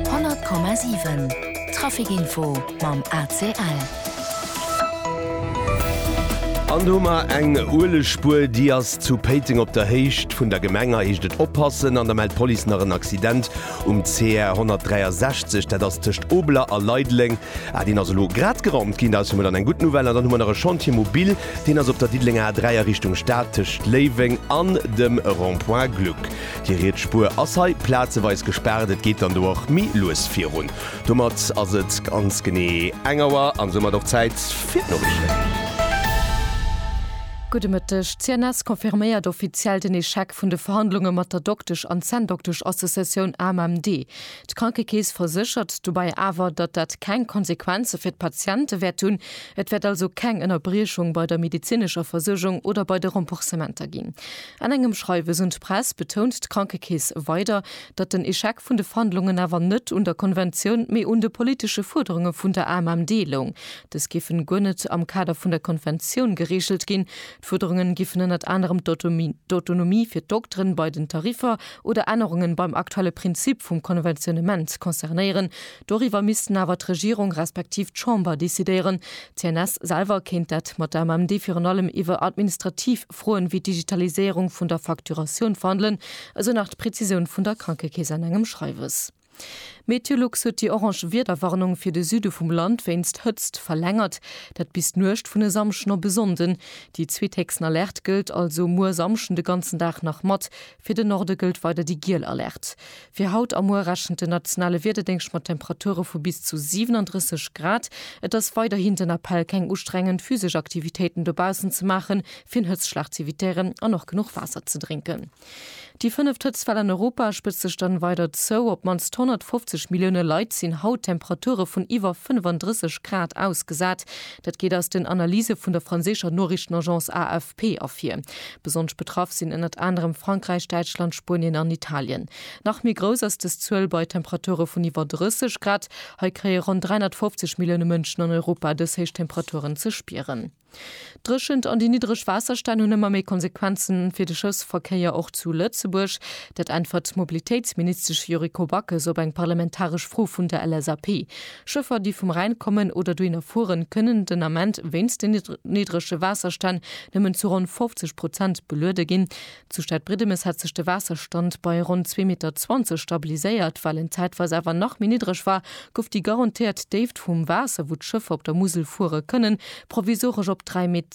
100,7 Trafic Info mam ACL. An do hu mer eng Uelegspuer, déi ass zu Péiteng op der Héicht vun der Gemeng. Hei heescht et oppassen an da mellt d'Police nach en Accident um CR 163, dat ass tëscht Obeler a Leideleng. Ah, deen ass elo grad geraumt ginn, dat ass jo mol dann eng gutt Nouvelle. An dann hu mer nach e Chantier mobil, deen ass op der Diddelenger A3 a Richtung Stad tëscht Léiweng an dem Rond-point Gluck. Déi riets Spuer ass hei plazeweis gespaart, et geet dann do och méi lues virun. Domat ass et ganz genee eng Auer an soumat och Zäit fir d'Noriichten. Gudde Mëtteg. D'CNS confirméiert offiziell den Echec vun de Verhandlunge mat der Doktesch an Zänndoktesch-Associatioun AMMD. D'Krankekeess verséchert dobäi awer, datt dat keng Konsequenze fir d'Patiente wäert hunn. Et wäert also keng Ënnerbriechung bei der medezinescher Versuergung oder bei de Remboursementer ginn. An engem Schreiwes un d'Press betount d'Krankekeess weider, datt den Echec vun de Verhandlungen awer net un der Konventioun, mee un de politesche Fuerderunge vun der AMMD loung. Dës géifen guer net am Kader vun der Konventioun gereegelt ginn. D'Fuerderungen géifen ënnert anerem d'Autonomie fir d'Dokteren bei den Tariffer oder Ännerungen beim aktuelle Prinzip vum Konventionnement concernéieren. Doriwwer missten awer d'Regierung respektiv d'Chamber decidéieren. D'CNS selwer kéint dat mat der AMMD virun allem iwwer administrativ. Froen ewéi d'Digitaliséierung vun der Facturatioun verhandelen, esou nach d'Prezisioun vun der Krankekeess an engem Schreiwes. Meteolux huet déi orange Wiederwarnung fir de Süde vum Land wéinst Hëtzt verlängert, dat bis d'Nuecht vun e Samschden op e Sonnden. Déi zweethéchsten Alerte gëllt also muer Samschden de ganzen Dag nach mat Fir den Norde gëllt weider déi giel Alerte. Fir haut a muer rechent den nationale Wiederdéngscht mat Temperature vu bis zu 37 Grad. Et ass weiderhin den Appell, keng ustrengend physesch Aktivitéiten dobaussen ze maachen, fir Hëtzschlag z'evitéieren an och genuch Waasser ze drénken. Déi fënneft Hëtztwell an Europa spëtzt sech dann weider zou. Op d'mannst 150 Millioune Leit sinn haut Temperature vun iwwer 35 Grad ausgesat. Dat geet aus den Analyse vun der franséischer Noriichtenagence AFP Paix ervir. Besonnesch betraff sinn ënnert anerem Frankräich, Däitschland, Spuenien an Italien. Nach méi grouss ass dës Zuel bei Temperature vun iwwer 30 Grad. Hei kréie ronn 350 Millioune Mënschen an Europa dës héich Temperaturen ze spieren. D'Dréchent an déi niddreg Waasserstänn hunn ëmmer méi Konsequenze fir de Schëffsverkéier, och zu Lëtzebuerg. Dat äntwert d'Mobilitéitsministesch Yuriko Backes op eng parlamentaresch Fro vun der LSAP. Schëffer, déi vum Rhäin kommen oder dohinner fueren, kënnen den Ament wéinst den niddrege Waasserstänn nëmmen zu ronn 50 Prozent beluede ginn. Zu Stadbridemes hätt sech de Waasserstand bei ronn 2,20 Meter stabiliséiert. Well en zäitweis awer nach méi niddreg war, gouf déi garantéiert Déift vum Waasser, wou d'Schëffer op der Musel fuere kënnen, provisoresch op 3,10 Met.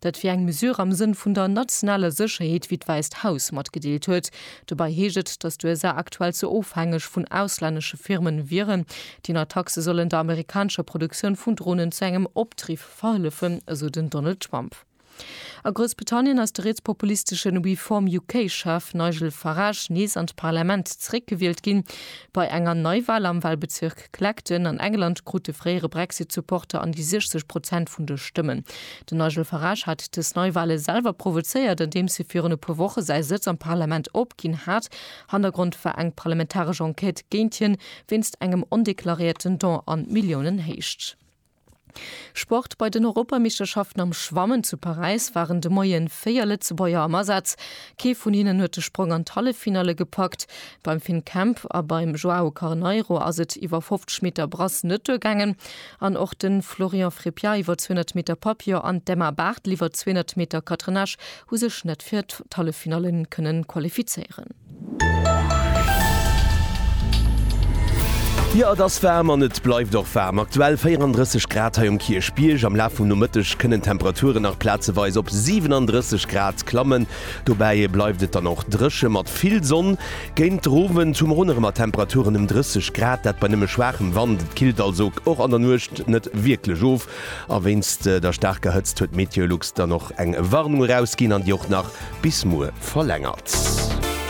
Dat wier eng Mesure am Sënn vun der nationaler Sécherheet, wéi d'Wäisst Haus matgedeelt huet. Dobäi heescht et, datt d'USA aktuell ze ofhängeg vun auslännesche Firmen wieren. Déi nei Taxe sollen der amerikanescher Produktioun vun Dronen zu engem Opdriff verhëllefen, esou den Donald Trump. A Groussbritannien ass de rietspopulistesche Reform UK-Chef Nigel Farage nees an d'Parlament zeréckgewielt ginn. Bei enger Neiwal am Walbezierk. Clacton an England krut de fréiere Brexit-Supporter an déi 60 Prozent vun de Stëmmen. Den Nigel Farage hat dës Neiwale selwer provozéiert, andeems hie virun e puer Woche säi Sëtz am Parlament opginn hat. Hannergrond war eng parlamentaresch Enquête géint hien, wéinst engem ondeklaréierten Don an Milliounenhéicht. Sport, Bei den Europameeschterschaften am Schwammen zu Paräis waren de Moie véier Lëtzebuerger am Asaz. Kee vun hinnen huet de Sprong an d'Halleffinalle gepackt. Beim Finn Kemp a beim Joao Carneiro ass et iwwer 50 Meter Brasse net duergaangen. An och de Florian Frepia iwwer 200 Meter Papillon an d'Emma Barthel iwwer 200 Meter Catenage hu sech net fir d'Halleffinallen kënnen qualifizéieren. Jo et ass waarm an et bleift och waarm. Aktuell 34 Grad hei um Kierchbierg. Am Laf vum Nomëtteg kënnen d'Temperaturen nach plazeweis op 37 Grad klammen. Dobäi bleift et dann och dréche mat vill Sonn. Géint den Owend hu mer un erëm mat Temperaturen ëm 30 Grad, dat bei nëmme schwaachem Wand. Et killt also och an der Nuecht net wierklech of. A wéinst der staarker Hëtzt huet Meteolux dann och eng Warnung erausginn an déi och nach bis muer verlängert.